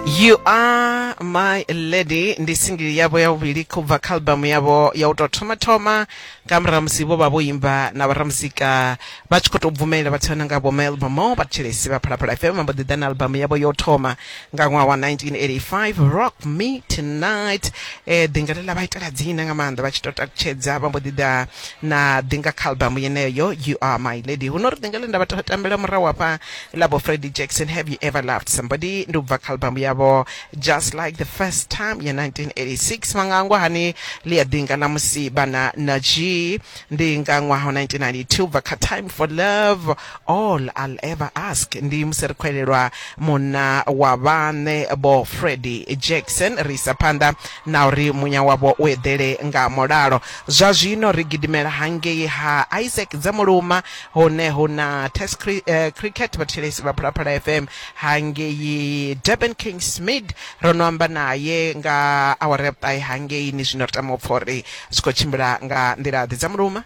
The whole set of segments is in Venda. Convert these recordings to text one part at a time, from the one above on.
you are my lady ndi singili yavho ya vhuvhili khou bva kha albamu yavho ya u tou thoma thoma nga murahu musi vho vha vho imba na vharamuzika vha tshi khou tou bvumelela vhathu vha nonga vho melbamo vhathetshelesi vha phalaphala fm vha mbo ḓi ḓa na albamu yavho yo thoma nga ṅwaha wa 1985 rock me tonight eh, ḓinga ḽe ḽa vha itela dzina nga maanḓa vha tshi tou takutshedza vha mbo ḓi ḓa na ḓinga kha albamu yeneyo you are my lady huno ri ḓinga ḽe nda vha tambela murahu hafha Labo Freddie Jackson Have You Ever Loved Somebody ndi ubva kha albamu yavho Just Like The First Time ya 1986 vha nga angwa hani ḽi a ḓinga ḽa musi vhana na G ndi nga ṅwaha wa 1992 ubva kha Time For Love All I'll Ever Ask ndi musi ri khou elelwa munna wa vhaṋe vho Freddie Jackson ri isa phanḓa na uri munya wavho u eḓele nga mulalo zwa zwino ri gidimela hangei ha Isaac Dzamuluma Hone hu na Test Cricket, vhathetshelesi vha Phalaphala FM hangei Durban, King Smid ro no amba naye nga awara ya vhuṱahe hangei ni zwino ri tama u pfa uri zwi khou tshimbila nga nḓila ḓe dza muluma.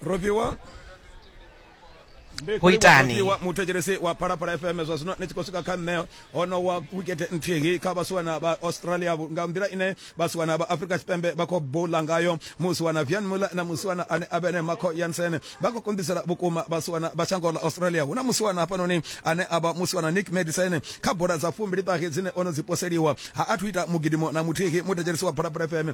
Rofhiwa ho itani muthu etshelesi wa phalaphala fm zwa zwino ni tshi khou swika kha nṋe ho no wa wikete nthihi kha vhasiwana vha australia nga nḓila ine vhasiwana vha afrika tshipembe vha khou bula ngayo musiwana vian muller na musiwana ane a vhene marco yansen vha khou konḓisela vhukuma vhasiwana vha shango ḽa australia hu na musiwana hafhanoni ane a vha musiwana nick medicine kha bola dza fumbili ṱahe dzine o no dzi poseliwa ha athu ita mugidimo na muthihi muthetshelesi wa bola fm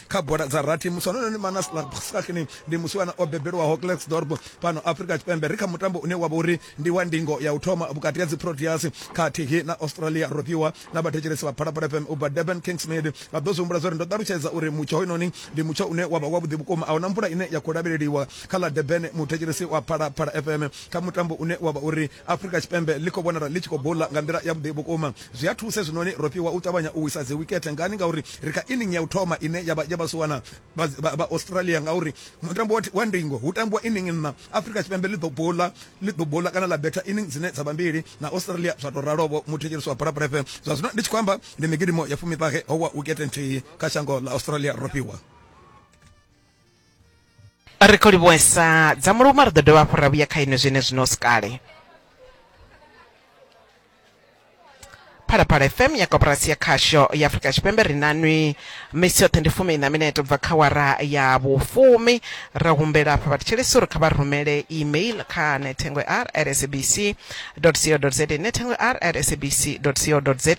kha bola dza rathi musi honoyo ni manaslar bsakni ndi musiwana o bebelwaho klexdorp fhano afrika tshipembe ri kha mutambo une wavha uri ndi wa ndingo ya u thoma vhukati ha dziproteas khathihi na australia ro fhiwa na vhathetshelesi vha phalaphala fm ubva durban kingsmid vha ḓo zwi humbula zwa uri ndo ṱalutshedza uri mutsho hoyunoni ndi mutsho une wavha wavhuḓi vhukuma a huna mvula ine ya khou lavheleliwa kha ḽa durban muthetshelesi wa phalaphala fm kha mutambo une wavha uri Afrika Tshipembe ḽi khou vhonala ḽi tshi khou bula nga nḓila yavhuḓi vhukuma. Zwi a thusa hezwinoni ro fhiwa u ṱavhanya u wisa dziwikethe. Ngani? Ngauri ri kha inning ya u thoma ine ya vha ya vhasiwana vha Australia. Ngauri mutambo wa ndingo hu tambiwa inning nṋa, Afrika Tshipembe ḽi ḓo bula ḽi ḓo bula kana ḽa betha inning dzine dza vha mbili na Australia zwa tou ralo, vho muthetshelesi wa bola Prefe. Zwa zwino ndi tshi khou amba, ndi migidimo ya fumi-ṱahe ho wa wikethe nthihi kha shango ḽa Australia ro fhiwa. ri khou livhuwesa dza muluma ri ḓo dovha hafhu ra vhuya kha ine zwine zwino sikale phalaphala fm ya koporasi ya khasho ya afurika tshipembe ri nanwi misi yoṱhe ndi fumi ina minete bva kha wara ya vhufumi ra humbela afha vhathetshelesi uri kha vha rumele email kha nethengo r rsbc www.sabc.co.za ine thengo r at sabc.co.za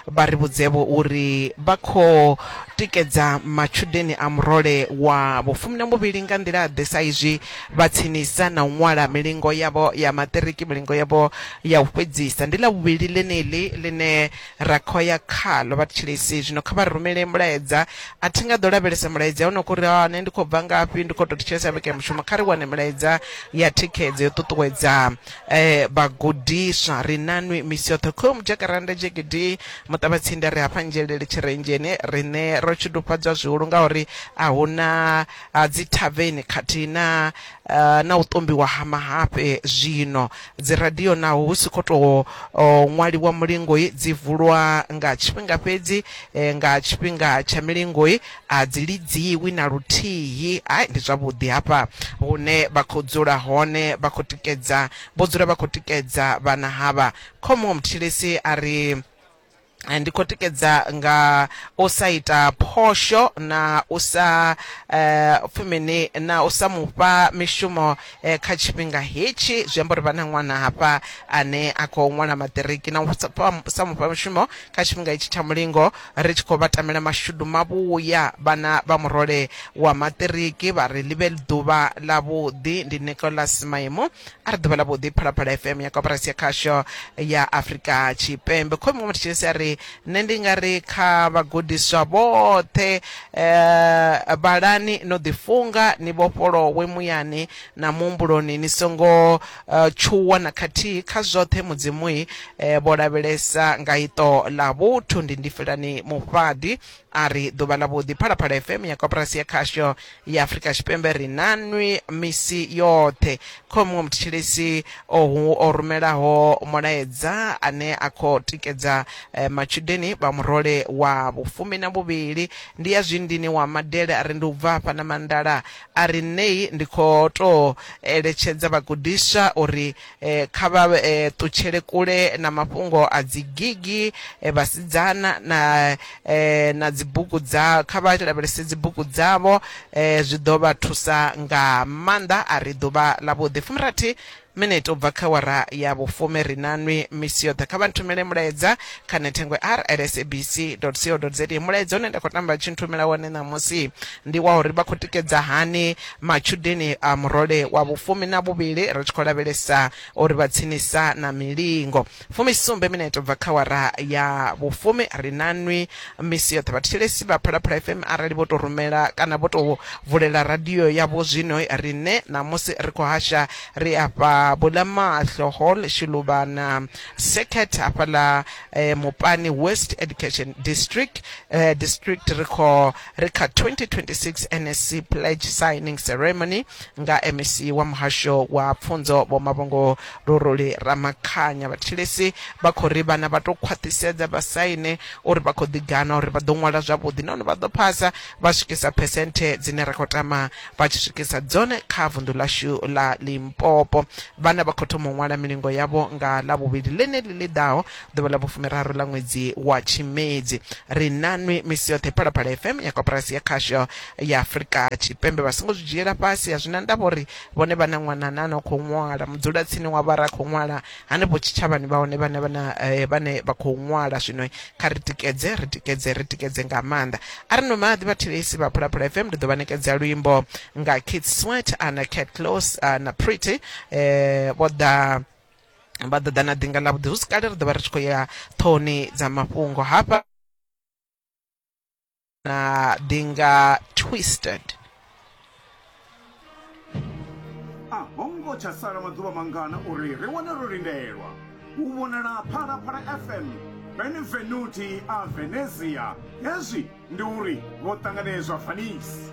vha ri vhudzevho uri vha khou tikedza matshudeni a murole wa vhufumi na muvhili nga nḓila ḓe sa izwi vha tsinisa na u ṅwala milingo yavho ya maṱiriki milingo yavho ya u fhedzisa ndi ḽa vhuvhili ḽeneḽi ḽine ra khou ya khalo vha thetshelesi zwino kha vha rumele mulaedza a thi nga ḓo lavhelesa mulaedza hono kuri ha nṋe ndi khou bva ngafhi ndi khou tou thetshelesa vhege mushumo kha ri wane mulaedza ya thikhedzo yo ṱuṱuwedza Eh, vhagudiswa ri na nwi misi yoṱhe khomu jakaranda jegidi muṱavhatsinda ri hafha nzhelele tshirenzheni rine ro tshidufhadzwa zwihulu ngauri a hu na dzithaveni khathihi na eh, na u ṱombiwa ha mahafhe zwino dziradio naho hu si khou tou oh, ṅwaliwa mulingoi dzi vulwa nga tshifhinga fhedzi eh, nga tshifhinga tsha milingoi a dzi lidziwi na luthihi hai ndi zwavhuḓi hafha hune vha khou dzula hone vha khou tikedza vho dzula vha khou tikedza vhana havha khomo mthilisi a ri eh, ndi khou tikedza nga u sa ita phosho na u sa eh, pfi mini na u sa mufha mishumo eh, kha tshifhinga hetshi zwi amba uri vha na ṅwana hafha ane a khou ṅwala maṱiriki na u sa- sa mufha mishumo kha tshifhinga hetshi tsha mulingo Ri tshi khou vha tamela mashudu mavhuya, vhana vha murole wa maṱiriki vha ri ḽi vhe ḓuvha ḽavhuḓi. Ndi Nicholas Maimo. A re ḓuvha ḽavhuḓi Phalaphala FM ya Koporasi ya Khasho ya Afrika Tshipembe. Khomi wa Mathetshelesi a ri, Nṋe ndi nga ri kha vhagudiswa vhoṱhe, eh, vhalani no ḓifunga, ni vhofholowe muyani na muhumbuloni, ni songo Tshuwo na khathihi kha zwoṱhe Mudzimu-i vho lavhelesa nga iṱo ḽa vhuthu. Ndi Ndifhelani Mufhaḓi a ri, Ḓuvha ḽavhuḓi Phalaphala FM ya Koporasi ya Khasho ya Afrika Tshipembe ri na nwi misi yoṱhe. Kho muṅwe muthetshelesi ohu o rumelaho mulaedza ane a khou tikedza matshudeni vha murole wa vhufumi na vhuvhili, ndi ya Zwindini wa Madele a ri, Ndi u bva hafha na Mandala A ri ṋei ndi khou tou eletshedza vhagudiswa uri kha vha ṱutshele kule na mafhungo a dzigigi, vhasidzana na na dzibugu dza, kha vha lavhelese dzibugu dzavho, zwi ḓo vha thusa nga maanḓa. A ri ḓuvha ḽavhuḓi. Fumirathi Minete u bva kha awara ya vhufumi ri na nwi misi yoṱhe. Kha vha nthumele mulaedza kha nethengwe ar at sabc dot co dot za. Mulaedza une nda khou tamba vha tshi nthumela wone ṋamusi ndi wa uri vha khou tikedza hani matshudeni a murole wa vhufumi na vhuvhili ri tshi khou lavhelesa uri vha tsinisa na milingo. Fumisumbe minete u bva kha awara ya vhufumi. Ri na nwi misi yoṱhe vhathetshelesi vha Phalaphala FM. Arali vho tou rumela kana vho tou vulela radio yavho zwino, riṋe ṋamusi ri khou hasha ri afha Bulamaxhlo Hall, Shiluvhana Circuit hafhaḽa Mupani West Education District, District. Ri kho ri kha 2026 NSC Pledge Signing Ceremony nga MEC wa Muhasho wa Pfunzo Vho Mavhungo Luruli Ramakhanya, Vhathilisi vha khou ri vhana vha tou khwaṱhisedza vha saine uri vha khou ḓiganwa uri vha ḓo ṅwala zwavhuḓi nahone vha ḓo phasa vha swikisa phesenthe dzine ra khou tama vha tshi swikisa dzone kha vunḓu ḽashu ḽa Limpopo. Vhana vha khou thoma u ṅwala milingo yavho nga Ḽavhuvhili ḽeneḽi ḽi ḓaho, ḓuvha ḽa vhufumiraru ḽa ṅwedzi wa Tshimedzi. Ri nanwi misi yoṱhe Phalaphala FM ya Koporasi ya Khasho ya Afrika Tshipembe. Vha songo zwi dzhiela fhasi, a zwi na ndavha uri vhone vha na ṅwana ane a no khou ṅwala mudzulatsini wa vha ra khou ṅwala hanefho tshitshavhani vha hone vhane vhana eh, vhane vha khou ṅwala zwino kha ri tikedze ri tikedze ri tikedze nga maanḓa a ri no maḓi vhathelesi vha phulaphula fm ndi ḓo vha nekedza luimbo nga kit swet ana cat close na pretty um vho ḓa vha ḓo ḓa na ḓinga ḽa vhuḓi hu si kale ri ḓo vha ri tshi khou ya ṱhoni dza mafhungo hafha Uh, they are twisted. a ho ngo tsha sala maḓuvha mangana uri ri wane ro lindelwa u vhonala phalaphala fm benvenuti a venezia hezwi ndi uri vho ṱanganedzwa fanisi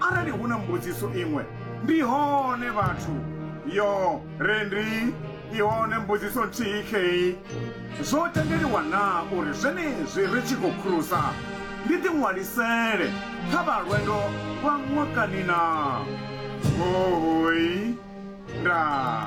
Arali hu na mbudziso iṅwe, ndi hone vhathu. Yo re ndi i hone mbudziso nthihi khei. Zwo tendeliwa naa uri zwenezwi ri tshi khou khurusa ndi ḓiṅwalisele kha vha lwendo lwa ṅwakani naa? Huhuy. Ndaa.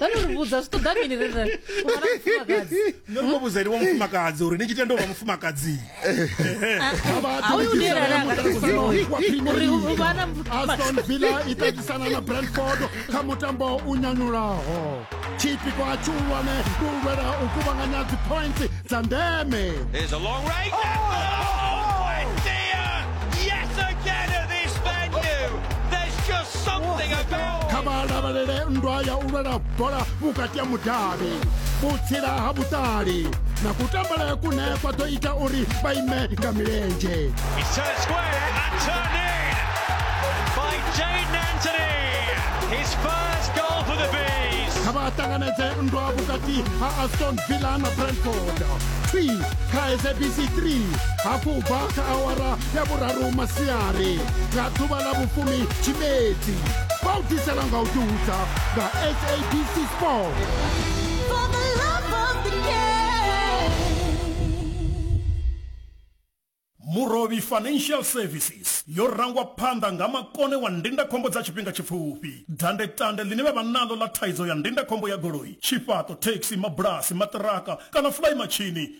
Dani uri vhudza zwi ṱoḓa mini ri ri u vha na mufumakadzi nṋe ndo vhudza ene wa mufumakadzi uri ni tshi tenda u vha mufumakadzi hoyu ndi ene ane anga ri vhudza hoyu uri u u vha na aston villa i ṱatisana na brentford kha mutambo u nyanyulaho tshipiko a tshihulwane ndi u lwela u kuvhanganya dzipoints dza ndeme There's a long range. Oh, my dear! kha vha lavhelele nndwa ya u lwela bola vhukati ha mudavhi vhutsila ha vhuṱali na kutambele kune kwa ḓo ita uri vha ime nga milenzhe kha vha ṱanganedze nndwa vhukati ha aston villa na brentford twi kha sabc 3 hafhu bva kha awara ya vhuraru masiari nga ḓuvha ḽa vhufumi tshimedzi vha u ḓisela nga u ḓihudza nga sabc sport murovhi financial services yo rangwa phanḓa nga makone wa ndindakhombo dza tshifhinga tshipfufhi dandetande ḽine vha vha naḽo ḽa thaidzo ya ndindakhombo ya goloi tshifhaṱo thekhisi mabulasi maṱiraka kana fulayi matshini